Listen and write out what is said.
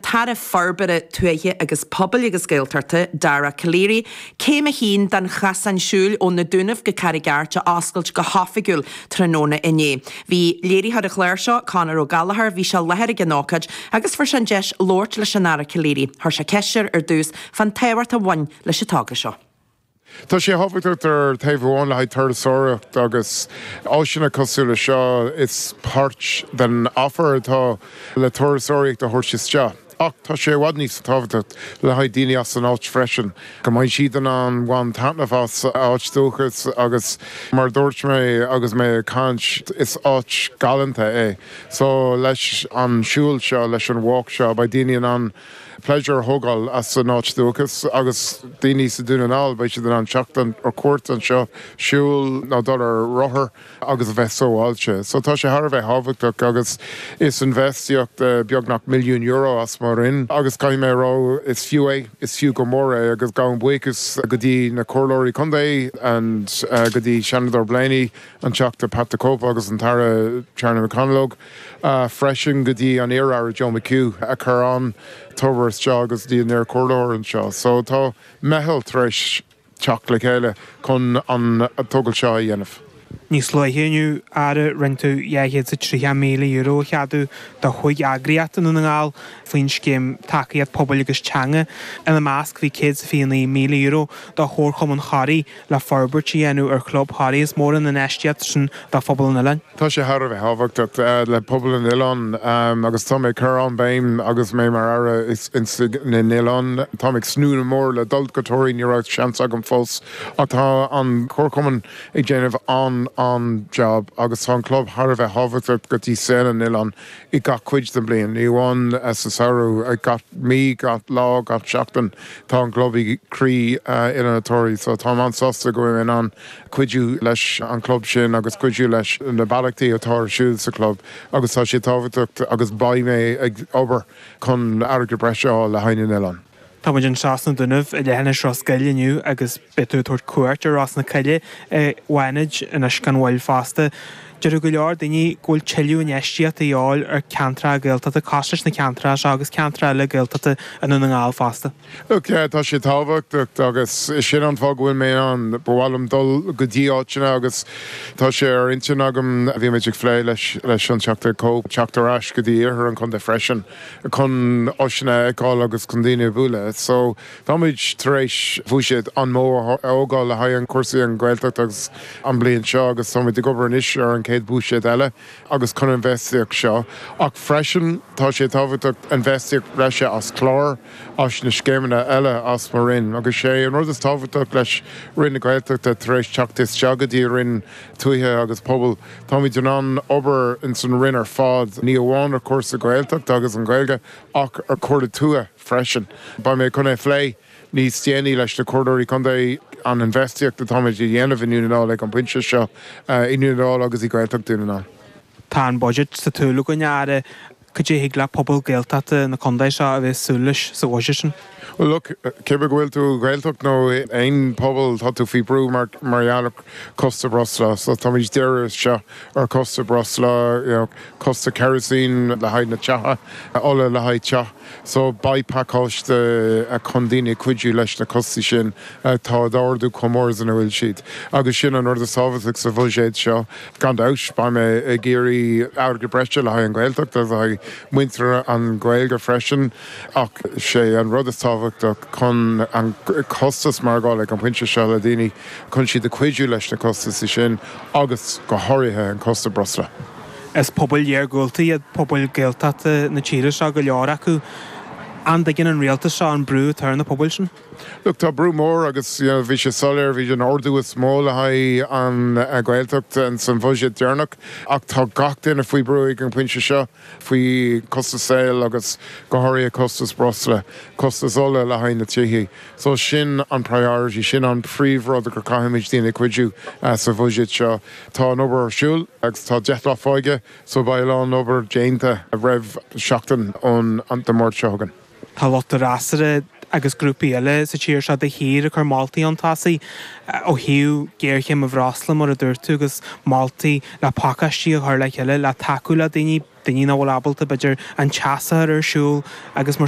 tAire Forbartha Tuaithe agus Pobail agus Gaeltachta, Dara Calleary, Céim 1 den Chasán Siúil ó Na Dúnaibh go Carraig Airt a oscailt go hoifigiúil tráthnóna inné. Bhí léiritheoir an chláir seo, Conall Ó Gallchóir, bhí sé i láthair ag an ócáid agus fuair sé an deis labhairt leis an Aire Calleary. Chuir sé ceist air ar dtús fán tábhacht a bhain leis an togra seo. Tá sé thábhachtach ar thaobh amháin le haghaidh turasóireacht agus áiseanna cosúil le seo, is páirt den offer atá le turasóireacht a thabhairt isteach, ach tá sé i bhfad níos tábhachtacht le haghaidh daoine as an áit freisin, go mbeidh siad in ann bhain taitneamh as a n-áit dúchas agus mar a dúirt mé agus mé ag caint, is áit galánta é. So leis an siúl seo, leis an walk seo, beidh daoine in ann. pléisiúr a thógáil as a n-áit dúchas agus daoine sa Dún na nGall, beidh siad in ann teacht ar cuairt anseo, siúl nó dul ar rothar agus a bheith sábháilte. So tá sé thar a bheith thábhachtach agus is infheistíocht beagnach milliún euro as mo Roinn agus caithfidh mé a rá, is fiú é, is fiú go mór é agus gabhaim buíochas go dtí na Comhairleoirí Contae and go dtí Seanadóir Blaney, an Teachta Pat the Cope agus an tAire Charlie McConalogue. freisin go dtí an iar-aire Joe McHugh a chur an togra isteach agus go dtí an iar-chomhairleoir anseo. So tá meitheal tar éis teacht le chéile chun an tógáil seo a dhéanamh. Níos luaithe inniu, Aire, rinne tú €230,000 a cheadú do chúig eagraíocht i nDún na nGall faoin scéim tacaíocht pobail agus teanga. Ina measc bhí €129,000 do Chomharchumann Thoraí, le forbairt a dhéanamh ar chlub Thoraí. Is mór an infheistíocht sin do phobal an oileáin. Tá sé thar a bheith thábhachtach le pobal an oileáin agus tá mé ag cur an-bhéim agus mé mar Aire i mbun na nOileán. Táim ag tnúth go mór le dul go Toraí, ní raibh seans agam fós ach tá an Comharchumann ag déanamh an-an-jab agus tá an club thar a bheith thábhachtach go dtí saol an oileáin. i gach cuid den bhliain, ní amháin sa samhradh, gach mí, gach lá, gach seachtain, tá an chlub i gcroí Oileán Toraí, so tá mé an-sásta go bhfuil mé in ann cuidiú leis an chlub sin agus cuidiú leis na beallachtaí atá ar siúl sa chlub agus tá siad tábhachtach agus beidh mé ag obair chun airgead breise a fháil le haghaidh na n-oileán. Tá muid anseo sna Dúnaibh i leithinis Ros Goill inniu agus beidh tú ag tabhairt cuairt ar Ros na Coille i bhFánaid anois gan mhoill fosta. Deir go leor daoine go bhfuil tuilleadh infheistíochta de dhíobháil ar ceantracha Gaeltachta, cosúil leis na ceantracha seo agus ceantracha eile Gaeltachta i nDún na nGall fosta. Look, tá sé tábhachtach agus sin an fáth go bhfuil mé ann. Ba mhaith liom dul go dtí áiteanna agus tá sé ar intinn agam, bhí muid ag phlé leis an Teachta Cope, teacht ar ais go dtí iarthar an chontae freisin. chun áiseanna a fheiceáil agus chun daoine a bhualadh. So, táimid tar éis bhuiséad an-mhór a thógáil le haghaidh cúrsaí an Ghaeltacht ins an bliain seo agus táimid ag obair anois ar an chéad bhuiséad eile agus chun infheistíocht seo. Ach freisin, tá sé tábhachtach infheistíocht bhreise as cláir, as na scéimeanna eile as mo Roinn agus sé an rud is tábhachtach leis Roinn na Gaeltachta tar éis teacht isteach go dtí Roinn Tuaithe agus Pobail. Táimid in ann obair ins an Roinn ar fad, ní amháin ar chúrsaí Gaeltachta agus an Ghaeilge ach ar chúrsaí tuaithe freisin. Beidh mé chun é a phlé níos déanaí leis na Comhairleoirí Contae, an infheistíocht atáimid a dhéanamh i nDún na nGall ag an bpointe seo i nDún na nGall agus i Gaeltacht Dhún na nGall. Tá an budget sa tsiúl againn, a Aire. Cad é a thig le pobal Gaeltachta na condae seo a bheith ag súil leis sa bhudget sin? Bhuel, look, cibé go bhfuil tú i Ghaeltacht nó i aon pobal tá tú faoi brú mar gheall ar costas breosla. So táimid díreach seo ar costas breosla, you know, costas kerosene le haghaidh na tithe, ola le haghaidh teach. So beidh pacáiste chun daoine a chuidiú leis na costais sin atá ag ardú chomh mór is an bhfuil siad. Agus sin an rud is tábhachtaigh sa bhuiséad seo. Gan dabht, beidh mé ag iarraidh airgead breise le haghaidh an Ghaeltacht agus le haghaidh muintir an Gaeilge freisin ach sé an rud is tábhachtach chun an costas maireachtála ag an pointe seo le daoine, chun siad a chuidiú leis na costais sin agus go háirithe an costas breosla. Is pobail iargúlta iad pobail Gaeltachta na tíre seo, go leor acu. An dtuigeann an rialtas seo an brú atá ar na pobail sin? Look, tá brú mór agus, you know, bhí sé soiléir, bhí an ardú is mó le haghaidh an Ghaeltacht san bhuiséad deireanach ach tá gach duine faoi brú ag an bpointe seo faoi chostas saoil agus go háirithe costas breosla, costas ola le haghaidh na tithe. So sin an priority, sin an príomh rud go caithfimid daoine a chuidiú sa bhuiséad seo. Tá an obair ar siúl agus tá deich lá fágtha so beidh a lán obair déanta roimh seachtain ón Dé Máirt seo chugainn. Tá lucht an fhreasúra agus grúpaí eile sa tír seo de shíor ag cur moltaí chun tosaigh ó thaobh géarchéim an bhreosla, mar a dúirt tú, agus moltaí le pacáistí a chur le chéile le tacú le daoine, daoine nach bhfuil ábalta, b'fhéidir, an teas a chur ar siúl agus mar sin.